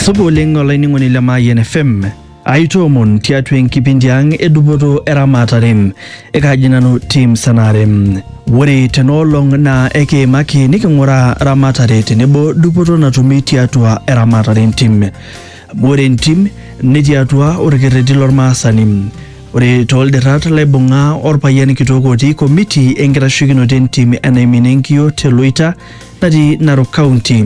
Supa oleng olainining'oni le Mayian FM. Aitoomon tiatua enkipindi ang edupoto eramatare. Ekaji nanu Tim Sanare. Ore tenaolong naa ekiimaki niking'uraa ramatare tenebo dupoto natumi tiatua eramatare entim. Amu ore entim netii atua orkerreti lormaasani. Ore tooldirrat laibung'a orpayian kitok otii komiti enkitasheikinoto entim enaimin enkiyio te Loita natii Narok County.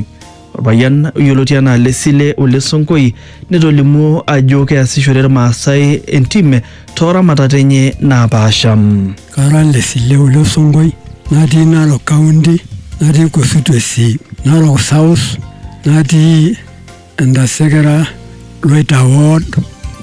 Orpayian oyioloti anaa Lesile Ole Sonkoi netolimuo ajo keasishore Irmaasai entim tooramatat enye naapaasha. Kara Lesile Ole Sonkoi natii Narok County natii constituency Narok South natii Entasekera Loita ward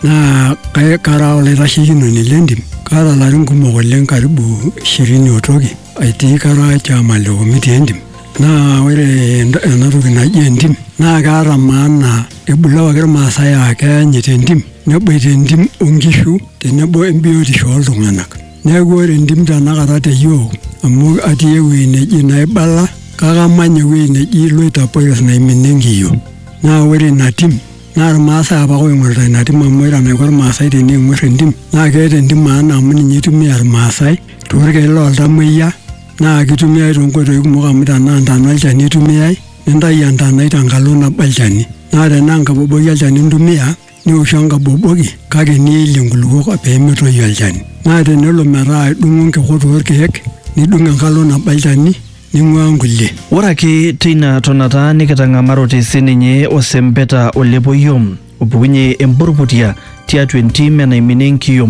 naa kai- kara olaitashekinoni lentim kaata ilarin kumok oleng karibu ishirini otoki aitii kara chairman le committee entim naa ore ent- enatoki naji entim naa keata maana ebulu apake irmaasai aa keanyit entim neboita entim onkishu tenebo embiotisho oltung'anak. Neaku ore entim tenakata te yiok amu atii ewueji neji naibala kake amanya ewueji neji loitapores naiminie inkiyio. Naa ore ina tim naa ilmaasai apake ooing'orita ina tim amu ore enaiko ilmaasai teneing'orr entim naa keeta entim maana amu ninye eitumia ilmaasai toorkeek loo ltamuoyia naa keitumiyai toonkoitoi kumok amu tenaa intana olchani eitumiyai nintayu entanai tenkalo nabo olchani. Naa tenaa enkaboboki olchani intumia nioshu enkaboboki kake niilie nkulukuok pee metoyu olchani. Naa tenelo metaa idung'o nkikot oo lkeek, nidung enkalo nabo olchani ning'uaa nkulie. Ore ake teina tonata nikitang'amarote sii ninye osempeta o lepoio opukunye empurrputia tiatua entim enaiminie enkiyio.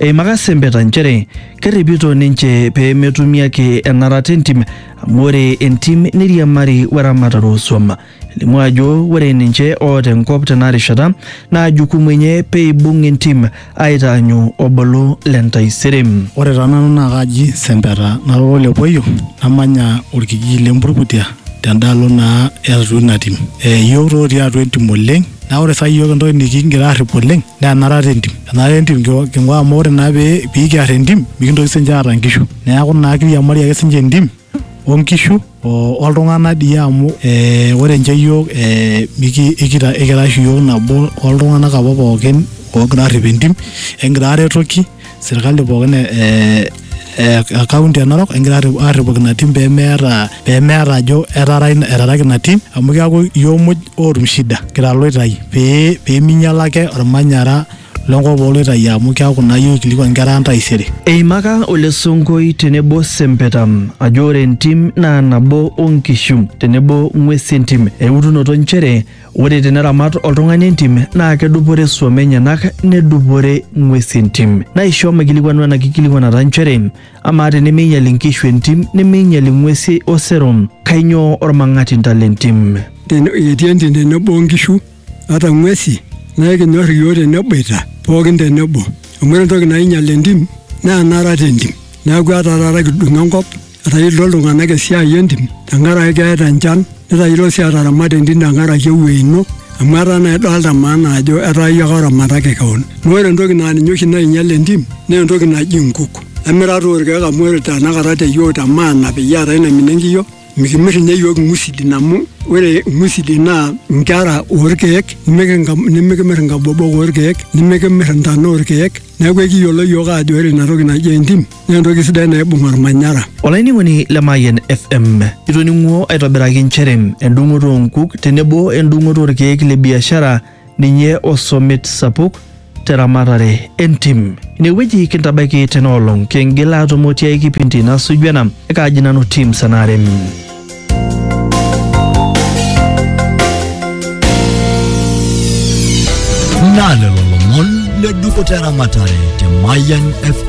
Eimaka sempeta nchere kerripito ninche pee metumi ake enarata entim amu ore entim neiriamari we ramatare oo suam. Elimu ajo ore ninche oota enkop tenarishata naa jukumu enye pee eibung entim aitaanyu obolo le ntaisere. Ore taa nanu naa kaaji Sempeta nara ole Poyo namanya olkijiji le Mburkutia tendaalo naa e atua ina tim. Iyiok taa otii atua entim oleng naa ore saa hii iyiok entoki nikigira aarrip oleng naa enarata entim. Enarata entim king'uaa amu ore naa pee kiarr entim mikintoki siininche aata inkishu. Neeku naa kiriamari ake siininche entim o nkishu O oltung'ana dii amu e, ore nche iyiook e, iki, ikita, ikira oshi iyiook nabo oltung'ana apa pooki oogira aarrip entim, ekigira aaretoki sirkali pooki e, e, e kaunti e Narok ekigira aarripoki ina tim pee meeta, pee meeta ajo etaraki ina tim amu keeku iyiook muj ootum shida kira iloitai pee, pee meinyiala ake olmanyara. lenkop ooloitayu amu keaku naa iyie oikilikuan nkera ang taisere. Eimaka Ole Sonkoi tenebo Sempeta ajo ore entim naa nabo o nkishu tenebo ng'uesi entim eutunoto nchere ore teneramat oltung'ani entim naa kedupore suom enyenak nedupore ng'uesi entim. Naisho maikilikuanu ena kikilikuanata nchere amaa tenemeinyal inkishu entim nemeinyal ing'uesi osero kainyoo olmang'atinta lentim? Etii entim tenebo o nkishu. ata ng'uesi naa ekinyor iyiook teneboita pookin tenebo amu ore entoki nainyial entim naa enarata entim neeku etaa taata kidung enkop etayiolito iltung'anak esiai entim tenkaraki keeta enchan netayiolo sii ataramata entim tenkaraki ewuei ino amu etaa naa idolta maana ajo etaa iyie ake oramataki kewon naa ore entoki naa ninye oshi nainyial entim naa entoki naji inkuk emirata orkeek amu ore tanakata te yiok te maana peyie eetae naimina enkiyio. Mikimir ninye iyiook ing'usidin amu ore ing'usidin naa nkera oorkeek nimikimir inkabobok oorkeek nimikimir intana oorkeek neeku ekiyiolo iyiook aajo ore ina toki naji entim naa entoki sidai naibung olmanyara. Olainining'oni le Mayian FM, itoning'uo aitobiraki nchere endung'oto oo nkuk tenebo endung'oto oorkeek le biashara ninye osomit sapuk teramatare entim. Inewueji kintabaiki tena olong, kingil aatumo tiai kipindi nasuju ena. Ekaaji nanu Tim Sanare. Naa lelo lomon le dukuta eramatare te Mayian FM.